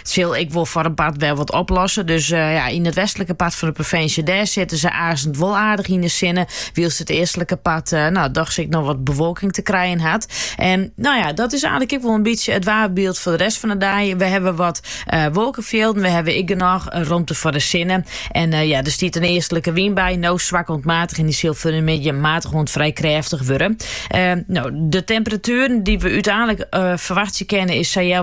It sil ek wol foar in part wer wat oplosse. Dus ja, yn it westlike part fan de provinsje, dêr sitte se aansen wol aardich yn de sinne. Wylst it eastlike part, nou, dochs ek noch wat bewolking te krijen hat. En nou ja, dat is eigenlik ek wol in bytsje it waarbyld foar de rest fan de dei. We hawwe wat uh, wolkefjilden, we hawwe ek genôch romte foar de sinne. En uh, ja, der stiet in eastlike wyn by, nou swak oant matich en dy sil foar de middei matich oant frij krêftich wurde. Uh, nou, de temperatueren dy't we úteinlik uh, ferwachtsje kinne is, ja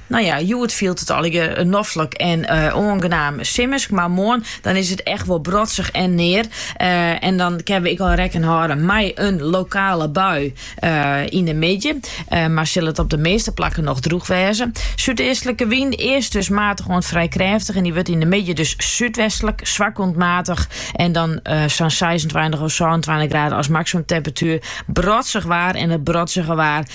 Nou ja, hjoed fielt it allegear noflik en oangenaam simmersk, mar moarn dan is it echt wol brotsich en near. en dan kinne we ek al rekken hâlde mei in lokale bui yn de middei, mar sil it op de measte plakken noch drûch wêze. Súdeastlike wyn, earst dus matich oant frij krêftich en dy wurdt yn de middei dus súdwestlik, swak oant matich en dan sa'n seisentweintich of sânentweintich graden as maksimumtemperatuer. Brotsich waar en it brotsige waar